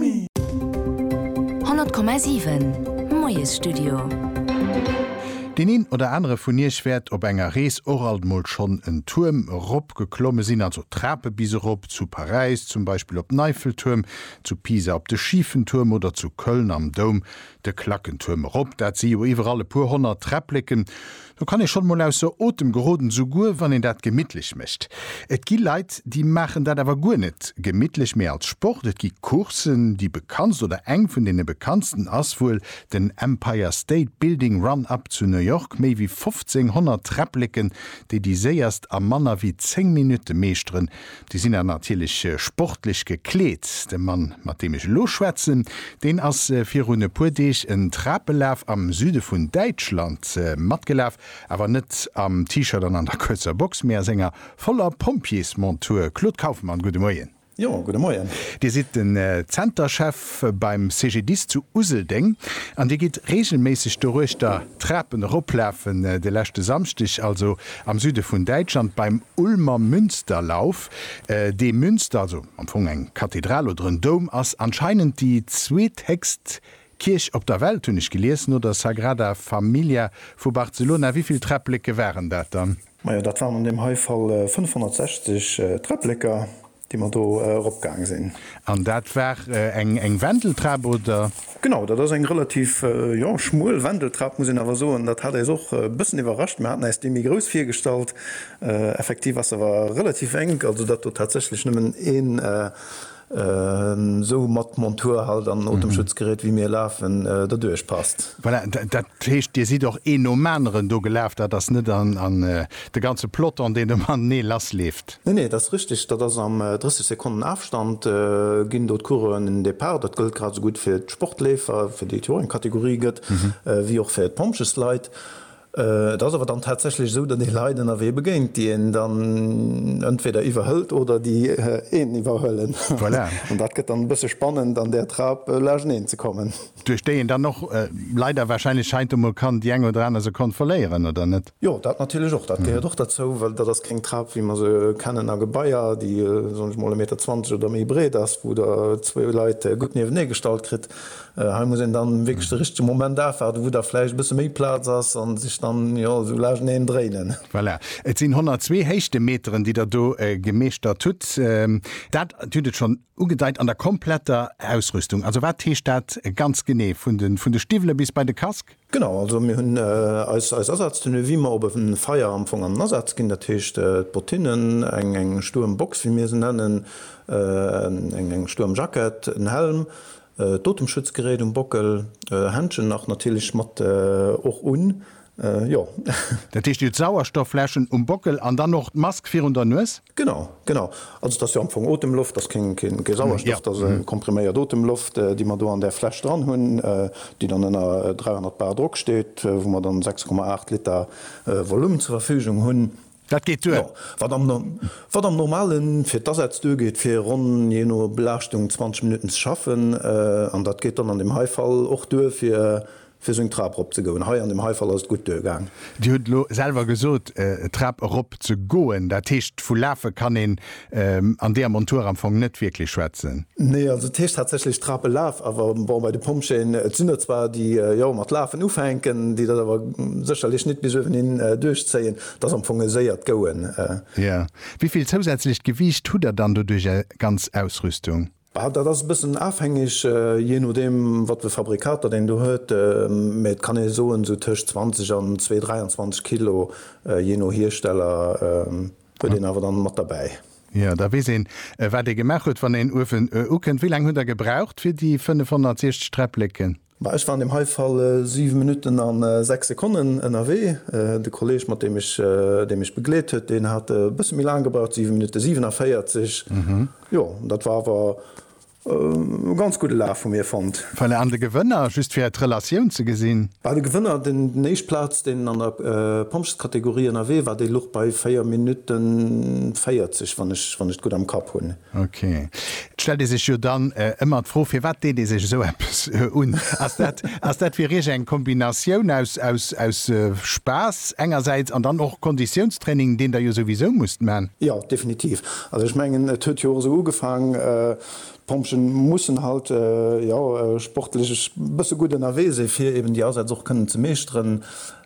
100,7 Moiesstudio. Deen een oder anere vun iech wäert op enger Rees och alt mol schonn en Tuerm erop geklomme sinn, also Trape bis erop, zu Paräis zum Beispill op den Eiffeltuerm, zu Pisa op de Schifen Tuerm oder zu Köln am Doum de Klackentuerm erop. Dat si jo iwwerall e puer honnert Träppleken. Do kann ee schonn emol ausser Otem geroden, souguer wann een dat gemittlech mécht. Et gi Leit, déi maachen dat awer guer net gemittlech, mee als Sport. Et gi Courssen, déi bekanntst oder eng vun deene bekanntsten ass wuel den Empire State Building Run Up zu New York, méi wéi 1500 Träppleken, déi déi séierst a manner wéi 10 Minutte meeschteren, Déi sinn dann natierlech sportlech gekleet. De Mann, mat deem ech elo schwätzen, deen ass virun e puer Deeg en Trapelaf am Süde vun Däitschland matgelaf, awer net am T-Shirt an an der kuerzer Box, mee a senger voller Pompjeesmontur. Claude Kaufmann, gudde Moien. Jo, gudde Moien. Dir sidd den Zenterchef. Schëff beim CGDIS zu Useldeng an Dir gitt reegelméisseg doruechter d'Trapen eroplafen. De leschte Samschdeg also am Süde vun Däitschland beim Ulmer Münsterlauf. Dee Münster, also am Fong eng Kathedral oder en Doum, ass anscheinend déi zweethéchst Kierch op der Welt, hunn ech gelies, no der Sagrada Familia vu Barcelona. Wéi vill Träppleke waren dat dann? Majo, dat waren an deem hei Fall 560 Träppleke. Déi mer do erop gaang sinn. An dat war eng Wendeltrap, oder? Genau, dat ass eng relativ, jo, schmuel Wendeltrap, muss een awer soen. Dat hat äis och e bëssen iwwerrascht. Mer haten äis déi méi grouss virgestallt. Effektiv ass se awer relativ enk, also dat do tatsächlech nëmmen een esou mat Montur halt an Otemschutzgerät, wéi mir lafen, derduerch passt. Voilà, dat heescht, Dir sidd och een nom aneren do gelaf. Dat ass net de ganze Peloton, deen ëmmer matenee lassleeft. Nee, nee, et ass richteg, dat ass am 30 Sekonnen Afstand ginn do d'Coureuren den Depart. Dat gëllt grad esou gutt fir d'Sportleefer, fir déi et jo och eng Kategorie gëtt, wéi och fir d'Pompjeesleit. Et ass awer dann tatsächlech esou, datt ee Leit ënnerwee begéint, déi een dann entweder iwwerhëlt oder déi een iwwerhuelen. Voilà. An dat gëtt dann e bësse spannend, an där Trap lageneen ze kommen. Duerch déi een dann och leider warscheinlech heiansdo mol kann déi eng oder aner Sekonn verléieren, oder net? Jo, dat natierlech och. Dat gehéiert och derzou, well dat ass keng Trap, wéi mer se kennen a Gebaier, déi, soen ech mol, e Meter zwanzeg oder méi breet ass, wou Der zwou Leit gutt niewene gestallt kritt. Hei muss een dann wierklech de richtege Moment afwaarden, wou da vläicht e bësse méi Plaz ass a sech dann, jo, esou laaschteneen dréinen. Voilà, et sinn 102 Héichtemeteren, déi Der do gemeeschtert hutt. Dat, Dir hutt et schonn ugedeit, an der kompletter Ausrüstung. Also wat heescht dat ganz genee? Vun de Stiwwele bis bei de Casque? Genau, also mir hunn eis Asaztenue wéi mer op e Feier am Fong an Asaz ginn. Dat heescht d'Bottinnen, eng stuerm Box wéi mir se nennen, eng stuerm Jackett, en Helm, d'Otemschutzgerät um Bockel, Händschen nach natierlech mat och un, jo. Dat heescht jo d'Sauerstoffläschen um Bockel an dann och d'Mask virun der Nues? Genau, genau. Also et ass jo am Fong Otemloft, et ass keng, keng, kee Sauerstoff, et ass kompriméiert Otemloft, déi mer do an där Fläsch dran hunn, déi dann ënner 300 bar Drock steet, wou mer dann 6,8 Liter Volume zur Verfügung hunn. Dat geet duer. Jo, wat am, wat am normale fir d'Asätz duergeet, fir ronn, jee no Belaaschtung, 20 Minutten ze schaffen. An dat geet dann an deem hei Fall och duer fir Fir seng Trap rop ze goen. Hei an dem hei Fall ass et gutt duergaang. Dir hutt elo selwer gesot, d'Trap erop ze goen, dat heescht vu lafe kann een an deeër Montur am Fong net wierklech schwätzen? Nee, also et heescht tatsächlech Trap elaf, awer bon, bei de Pompjeeën, et sinn der zwar déi jo mat lafen ufänken, déi dat awer sécherlech net bis uewen hin duerchzéien, et ass am Fong e séiert Goen. Jo, wéi vill zousätzlecht Gewiicht hutt der dann doduerch, är ganz Ausrüstung? Bah, dat ass e bëssen afhängeg, jee nodeem wat fir Fabrikater deen do huet, mä et kann ee soen, esou tëscht 20 an zwee 23 Kilo, jee no Hiersteller, huet een awer dann mat derbäi. Jo, da weess een, wat ee gemaach huet, wann een Uefen ukënnt. Wéi laang hutt Der gebraucht fir déi 560 Träppleken? Ma ech war an deem hei Fall 7 Minutten a 6 Sekonnen ënnerwee. De Kolleg, mat deem ech, dee mech begleet huet, deen hat e bësse méi laang gebraucht, 7 Minutte 47. Jo, dat war awer e ganz gudde Laf vu mir fonnt. Voilà, an de Gewënner, just fir d'Relatioun ze gesinn? Bah, de Gewënner, deen éischt Plaz, deen an der Pompjeeskategorie ënnerwee war, dee luch bei 4 Minutte 40, wann ech, wann ech et gutt am Kapp hunn. Ok. Et stellt ee sech jo dann ëmmer d'Fro, firwat deet ee sech esou eppes un? Ass dat, ass dat fir Iech eng Kombinatioun aus, aus, aus Spaass engersäits an dann och Konditiounstraining, deen Der jo souwisou musst man? Jo, definitiv. Also ech mengen, et huet jo och esou ugefaang, d'Pompjeeën mussen halt, jo, sportlech e bësse gutt ënnerwee si fir eben déi Asätz och kënnen ze meeschteren,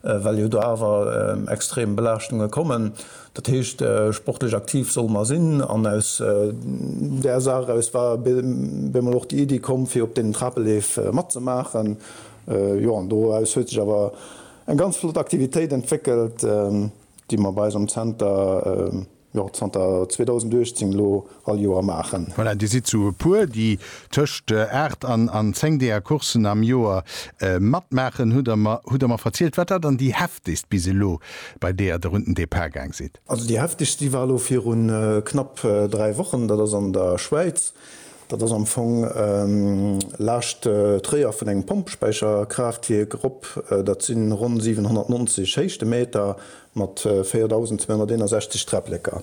well jo do awer extrem Belaaschtunge kommen. Dat heescht, sportlech aktiv solle mer sinn. An aus där Saach eraus war bei mol och déi Iddi komm, fir op deenen Trapeleef matzemaachen. Jo, an doraus huet sech awer eng ganz flott Aktivitéit entwéckelt, déi mer bei eis am Zenter, jo, zanter 2018 elo, all Joer maachen. Voilà, Dir sidd sou e puer, déi tëscht aacht an zéng deeër Coursen am Joer matmaachen, hutt Der mer verzielt. Wat war dann déi heftegst bis elo, bei deeër Der un den Depart gaang sidd? Also déi heftegst, déi war elo viru knapp dräi Wochen. Dat ass an der Schwäiz. Dat ass am Fong laascht Tréier vun engem Pompespäicherkraaftwierk erop. Dat si ronn 790 Héichtemeter mat 4.261 Träpplëcker.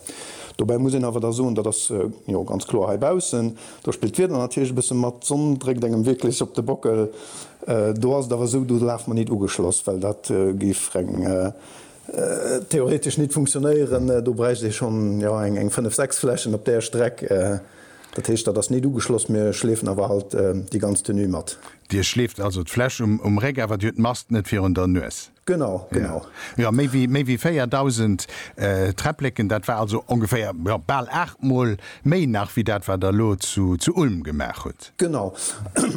Dobäi muss een awer da soen, dat ass jo ganz kloer heibaussen, do spillt d'Wieder natierlech e bësse mat, d'Sonn dréckt engem wierklech op de Bockel. Do ass et awer esou, do laf mer nit ugeschloss, well dat géif reng theoretesch nit funktionéieren, do bräicht ee schonn jo eng fënnef, sechs Flächen op där Streck. Dat heescht, dat ass nit ugeschloss, mir schleefen awer halt déi ganz Tenue mat. Dir schleeft also d'Fläch um Réck, awer dir hutt d'Mast net virun der Nues? Genau, genau. Jo, méi wéi 4.000 Träppleken, dat war also ongeféier, jo, bal aachtmol méi nach wéi dat, wat Der elo zu Ulm gemaach hutt. Genau.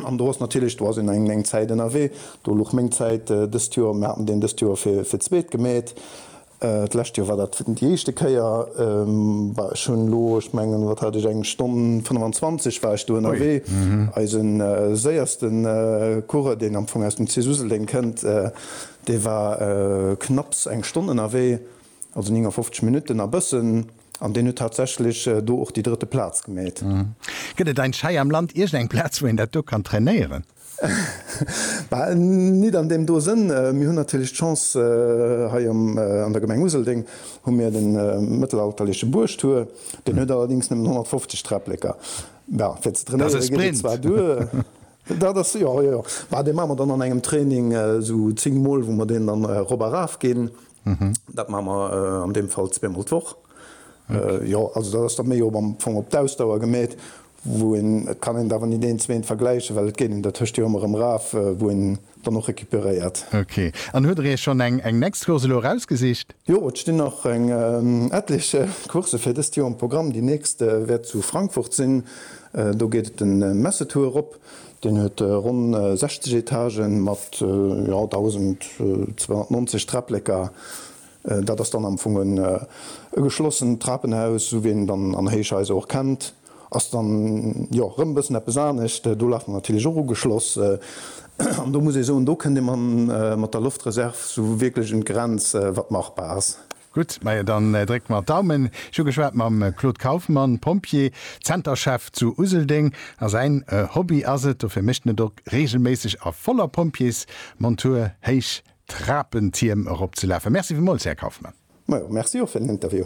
An do ass natierlech, do ass een eng Zäit ënnerwee. Do luch meng Zäit dëst Joer, mir haten deen dëst Joer fir d'zweet gemeet. D'lescht Joer war dat déi éischte Kéier. Bah, ech hunn elo, ech mengen, wat hat ech, eng Stonn 25 war ech do ënnerwee. Eise séierste Coureur, deen am Fong aus dem Cis Useldeng kënnt, dee war knapps eng Stonn ënnerwee, also 59 Minutten a bëssen, an deen huet tatsächlech do och déi drëtte Plaz gemeet. Gëtt et ein Schei am Land iergendeng Plaz, wou een dat do kann trainéieren? Bah, nit an deem do Sënn. Mir hunn natierlech d'Chance, hei an der Gemeng Useldeng hu mir de mëttelalterleche Buergtur. Deen huet allerdéngs nëmmen 150 Träpleker. Bah, fir ze trainéiere geet et zwar duer. Dat ass Sprint! Jo, jo, jo. Bah, dee maache mer dann an engem Training esou zéng Mol, wou mer deen dann erop a raf ginn. Dat maache mer an deem Fall zweemol d'Woch. Jo, also dat ass da méi am Fong op d'Ausdauer gemeet. wou een, et kann een awer net deen zwéint vergläichen, well et geet een dertëscht jo ëmmer erëm raf, wou een dann och recuperéiert. Ok. An huet der iech schonn eng eng next Course elo erausgesicht? Jo, et stinn nach eng etlech Coursse fir dëst Joer um Programm. Déi nächst wäert zu Frankfurt sinn. Do geet et den Messeturr erop. Deen huet ronn 60 Etagen mat, jo, 1.290 Träpleker. Dat ass dann am Fong e geschlossent Trapenhaus, esou wéi een et dann an Héichhaiser och kennt. Ass dann jo rëm e bëssen eppes anescht. Do lafen mer natierlech och ugeschloss. An do muss ee soen, do kënnt ee mat der Loftreserv esou wierklech un d'Grenz, wat machbar ass. Gutt, majo dann drécke mer d'Daumen. Ech hu geschwat mam Claude Kaufmann, Pompjee, Zenterchef zu Useldeng. A säin Hobby ass et, dofir mécht en et och reegelméisseg a voller Pompjeesmontur héich Trapentierm eropzelafen. Merci villmools, Här Kaufmann. Majo, merci och fir den Interview.